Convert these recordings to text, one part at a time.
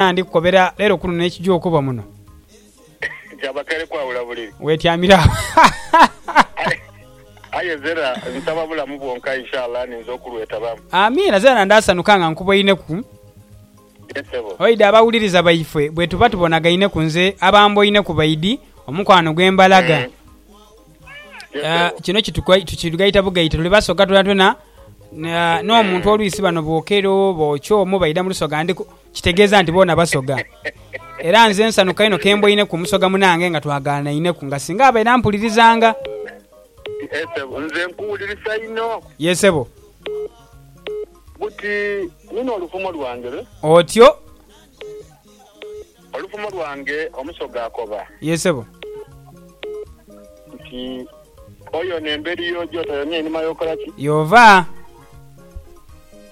Ela ndi kukobera leero kuno n'ekija okuba muno. Kyabakere kwawula buliri. Wetyamire agho. Aye Zera nsaba bulamu bwonka inshallah ninze okulwetabamu. Amiina Zera ndaasanuka nga nkuboineku. Ye sebo. Oidhi abawuliriza baife bwetuba tubonagaineku nze aba amboineku baidhi omukwano gwe mbalaga. Ye Aa, sebo. kino kituga- tukigaita bugaite tuli basoga twonatwona. Aa, n'omuntu oluisi bano bwokero oba okyomu baidha mu lusoga ndi ku. Kitegeeza nti boona basoga. Era nze nsanuka inho kemboineku musoga munange nga twagaanainheku nga singa abaire ampulirizanga. Yee sebo nze nkuwulirisa inho. Yee sebo. Buti nina olufumo lwange be. Otyo. Olufumo lwange omusoga akoba. Yee sebo. Nti oyona emberi yoja otoyona einhuma yokola ki? Yova.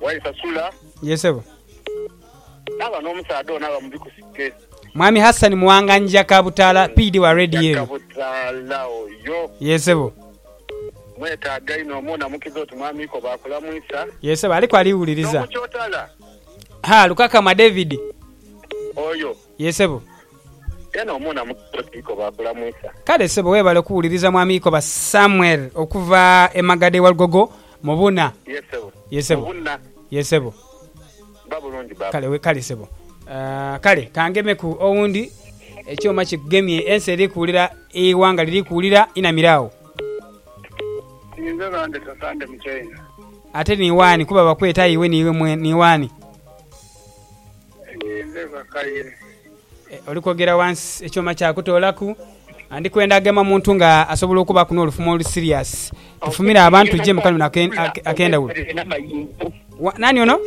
waisasula. Yee sebo. Naaba n'omusaadha ono aba mubi ku site. Mwami Hassan Muwanga Njja Kabutaala PD wa Red Njja Yellow. Kabutaala oyo. Yee sebo. Mwetaaga inho omu onamukiza oti Mwami Iko baakulamwisa. Yee sebo aliku aliwuliriza. N'omukyotala. Haa Lukakama David. Oyo. Yee sebo. Eno omuna mukolo ki Ikobo akulamwisa. Kale sebo webale kuwuliriza mwami Ikoba Samuel okuva e Magada e Walugogo mu buna. Yee sebo. Yee Mu sebo. buna. Yee sebo. Ba bulungi baba. Kale wekale sebo. Kale kangemeku owundi. Ekyoma kikugemye ensi eri kuwulira eighanga liri kuwulira inamira agho. Ninze bande tata ndi mu China. Ate niwani kuba bakweta iwe niwe mwene niwani. Nze Bakaire. Oli kwogera wansi, ekyoma kyakutoolaku. Ndi kwenda agema omuntu nga asobola okubaaku n'olufumo olu serious. Tufumire abantu gye mu kano ak'endhawulo. Nani ono?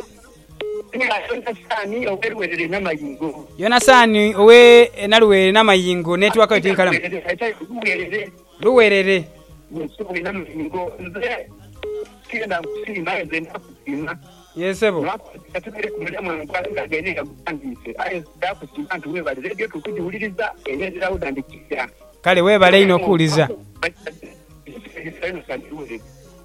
Yonasaani ow'e Luwerere Namayingo. Yonasaani ow'e Naluwerere Namayingo, netiwaaka yo ti nkalamu. Luwerere. Luwerere. Yee sebo. Mwaka gwa kasita tubeire ku mulimu eno twala embaga eno eyagughandiise. Aye nsobola kusiima nti weebale leediyo tuli kugiwuliriza era eri lauda and clear. Kale weebale inho kuwuliriza.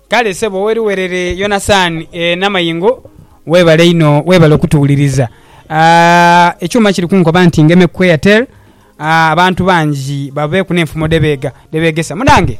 Kale sebo owe Luwerere Yonasaani e Namayingo weebale inho weebale okutuwuliriza. Ekyuma kiri kunkoba nti ngemeku ku Airtel abantu bangi babeeku n'enfumo dhe beega, dhe beegesa. Munange!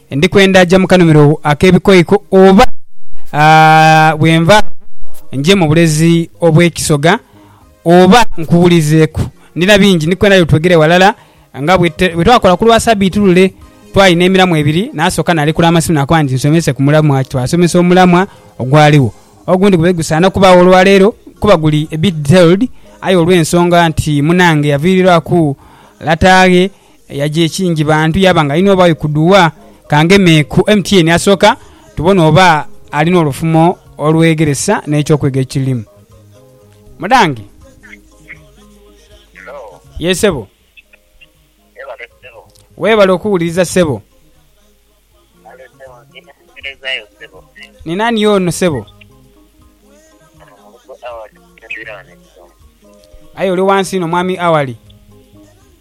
Ndikwenda ja mu kanhumiro ak'ebikoiko, oba bwe nvaagho nje mu bulezi obw'ekisoga, oba nkuwulizeeku? Ndina bingi. Ndikwenda yo twegere ghalala nga bwe twakola ku lwa Sabiiti lule. Twali n'emiramwa ebiri, naasooka naalekula amasimu naakoba nti nsomese ku mulamwa ki twasomesa omulamwa ogwaligho. Ogundi gube gusaana kubaagho olwa leero kuba guli a bit detailed, aye olw'ensonga nti munange yaviirirwaku lata ghe, Eyagya ekingi bantu yaaba nga alina oba ikudhuwa. Ka ngeme ku MTN asooka tubone oba alina olufumo olwegeresa n'ekyokwiga ekilimu. Mudange. Hello. Yee sebo. Webale sebo. Webale okuwuliriza sebo. Kale sebo ndi mukuwerezayo sebo. Ni nani ono sebo? Ono mulugo Awali Ntwire wano e Kisongo. Aye oli wansi inho mwami Awali.